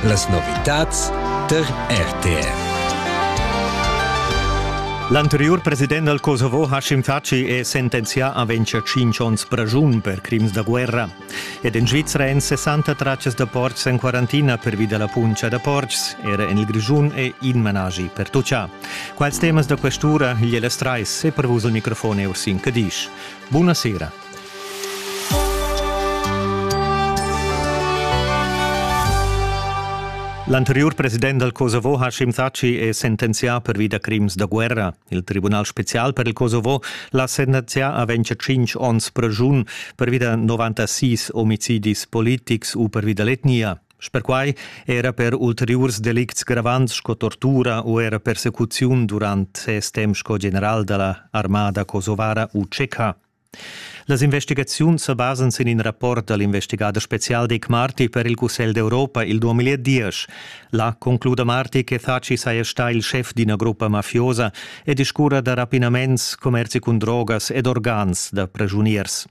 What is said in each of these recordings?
Las novitads tar RTR. L'anteriur president dal Kosovo Hashim Thaçi è sentenzià a vencer 5 onns pragiun per crims da guerra. Ed en Svizra èn 60 traccias da portgs en quarantina pervi da la puntscha da portgs. Era en il Grischun è in managi per tuccià. Quals temas da questura, Gliela Streis e per vus il microfon è Ursin Cadisch. Buonasera. L'anteriur president dal Kosovo Hashim Thaçi è sentenzià pervi da crims da guerra. Il Tribunal spezial per il Kosovo l'ha sentenzià a 25 onns pregiun pervi da 96 omicidis politics u pervi da l'etnia. Sper quai era per ulteriurs delicts gravants sco tortura u era persecuziun durant ses temp sco general da la armada kosovara u tscheca. Las investigaziuns sa basan sin in rapport dal investigader spezial Dick Marty per il Cussegl d'Europa il 2010. Là concluda Marty che Thaci saja stà il schef d'ina gruppa mafiosa e discurra da rapinaments, commerzi cun drogas ed organs da pregiuniers.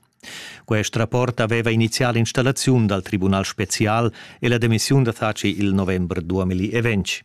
Quest rapport aveva inizià l'installaziun dal Tribunal spezial e la demissiun da Thaci il november 2020.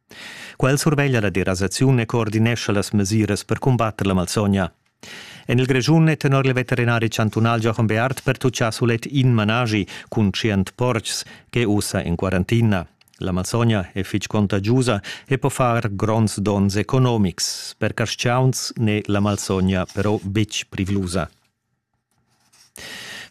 Quel surveglia la derasaziun e coordinescha las mesiras per cumbatter la malsogna. En il Grischun è tenor il veterinari chantunal Jochen Beart pertutgà sulet in managi cun tschient portgs che ussa en quarantina. La malsogna è fitg contagiusa e po far gronds donns economics. Per carstgauns n'è la malsogna però betg privlusa.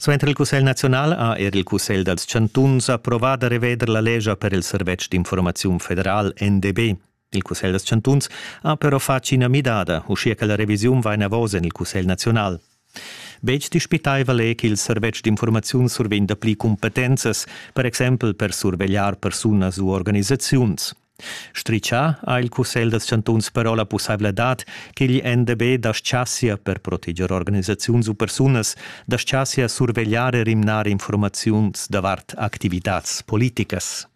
Suenter il cussegl naziunal ha er il cussegl dals chantuns approvà da reveder la lescha per il servetsch d'informaziun federal NDB. Il cussegl dals chantuns ha però fatg ina midada, uschia che la revisiun va enavos en il cussegl naziunal. Betg dispitaival è ch'il servetsch d'informaziun survegn dapli cumpetenzas, per exempel per survegliar persunas u organisaziuns. Stritschà ha il cussegl dals chantuns però la pussaivladad ch'igl NDB daschasia per proteger organisaziuns u persunas, daschasia survegliar e rimnar infurmaziuns davart activitads politicas.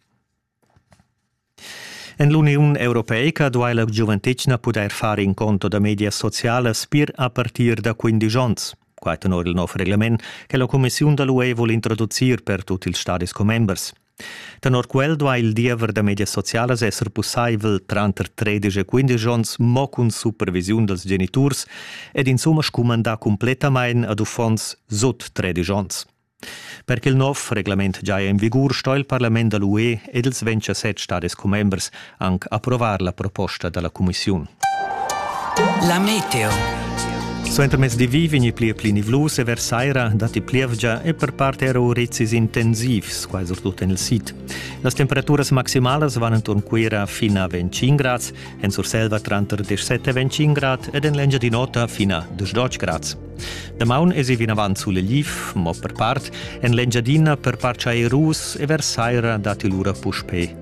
En l'Uniun europeica duai la giuventetgna pudair far in conto da medias socialas pir a partir da 15 onns. Quai tenor il nov reglement che la cumissiun da l'UE vul introducir per tut ils stadis commembers. Tenor quel duai il diever da medias socialas esser pussaivel tranter tredisch e quindesch onns mo cun supervisiun dals geniturs ed insumma scumandar cumplettamain ad uffants sut tredisch onns. Per ch'il nov reglament giaja en vigur sto il parlament da l'UE ed ils 27 stadis commembers anc approvar la proposta da la cumissiun. La meteo. Suentermezdi vi vegni pli e pli nivlus e versaira datti plievgia e per part era urizis intensivs, quai surtut en il sid. Las temperaturas maximalas van enturn Cuira fin a 25 grads, en Surselva tranter 17 e 25 grad ed en l'Engiadin'Ota fin a 12 grads. Damaun esi vinavant suleliv, mo per part en l'Engiadina per part chairus e versaira datti lura puspè